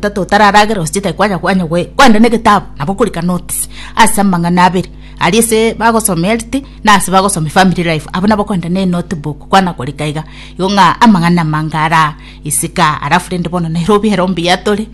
Tata otararagera ose chitai kwanya kwanya goe kwenda negetabu nabo okorika notes ase amang'ana abere aria ase bagosoma health na ase bagosoma family life abo nabo kwenda ne notebook kwana korika iga igo ng'a amang'ana amange ara isiko aa alafu rende bono nere obiere ombuya tore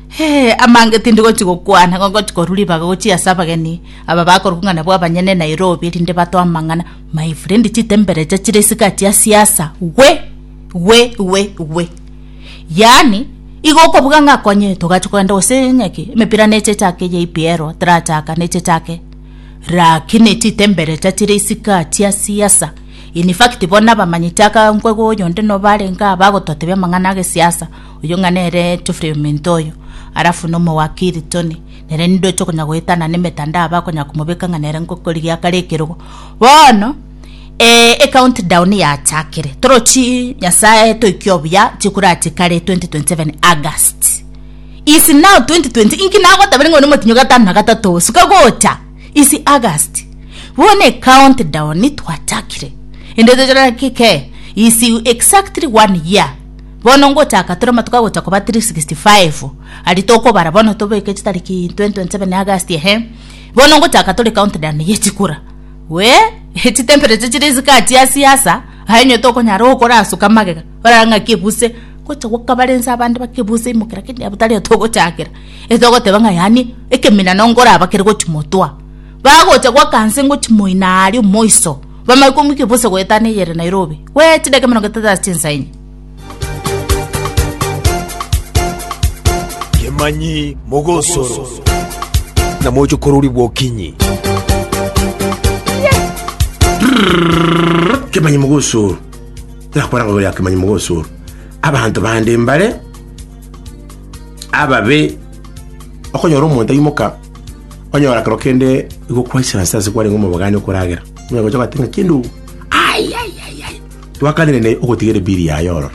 hee amange tindi gochi gokwana igo ngochi korwa ribaga gochia ase abageni aba bakorokwa ng'a nabwo abanyene Nairobi erinde batoe amang'ana my friend chitembere echa chire isiko aa chia siasa gwe gwe gwe gwe. yaani igo okobuga ng'a akonye togachia kogenda gose onye ki emepira neche echake ya EPL tarachaka neche echake rakini chitembeleta chire isiko chia siasa in fact bono abamanyete aka nkwo iga oyo onde nobo arenge aba agototebia amang'ana agesiasa oyio ng'a nere Geoffrey Ominto oyo alafu na omowakiri Tony nere ninde oche konya goetana na emetandao bakonyara komobeka ng'a nere ngokorigia kare ekerogo bono. Ee ecount down yachakire torochi nyasaye toiki obuya chikurachi kare 2027 August is now 2020 inki nagotabere ng'one motinyo gatano na gatato suka gocha is August bone count down twachakire ende tochora kike is exactly one year bono ngochaka tore matuka gocha koba 365 ari tokobara bono tobeke chitariki 2027 August ehe bono ngochaka tore count down yechikura we chitemperature chire chigachia asie asa aye onye tokonyara okorasuka magega orara ng'a kebuse gocha gokabare nse abande bakebuse imoke lakini abo tari atogochakera etogoteba ng'a yaani ekemina nongo orabakere gochi motwa bagocha goaka nse ngochi moino aria omoiso bamanye komoika ebose goetana eyere Nairobi we chidaka emerongo etato ase chinsa enye. Kemanyi mogosoro. Na moche korori bwokinyi. kemanyi mogosoro nakora ngabo ya kemanyi mogosoro abanto bande mbare ababe okonyora omonto aimoka onyora kero kende igokwaisana ase ase kwarenge omobogani okoragera onye gocha ogoteba ng'a kende ogo ai ai ai ai Twakanire naye ogotiga erebiri yaye ororo.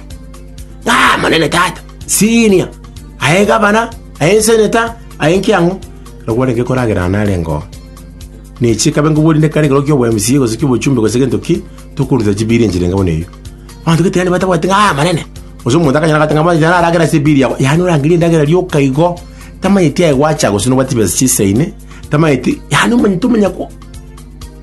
Aa, monene tata, siinia! Aye gavana, aye enseneta, aye ekiang'u, ekero gwarenge koragerana nare ngoo. Ne chikabe nkobori nde kare ekero ki'obo MCA gose ki'obochumbe gose gento ki, tokoruta chibiri enchera enga buna eyio. Abanto gete yaani batabwati ng'a aa, monene! Gose omonto akanyora agoteba ng'a monene, nare agere ase ebiri yao. Yaani orangerie endagera rioka igo, tamanyeti aye gwacha gose nobwate chibesa chisaine, tamanyeti, yaani omanyete omonyako.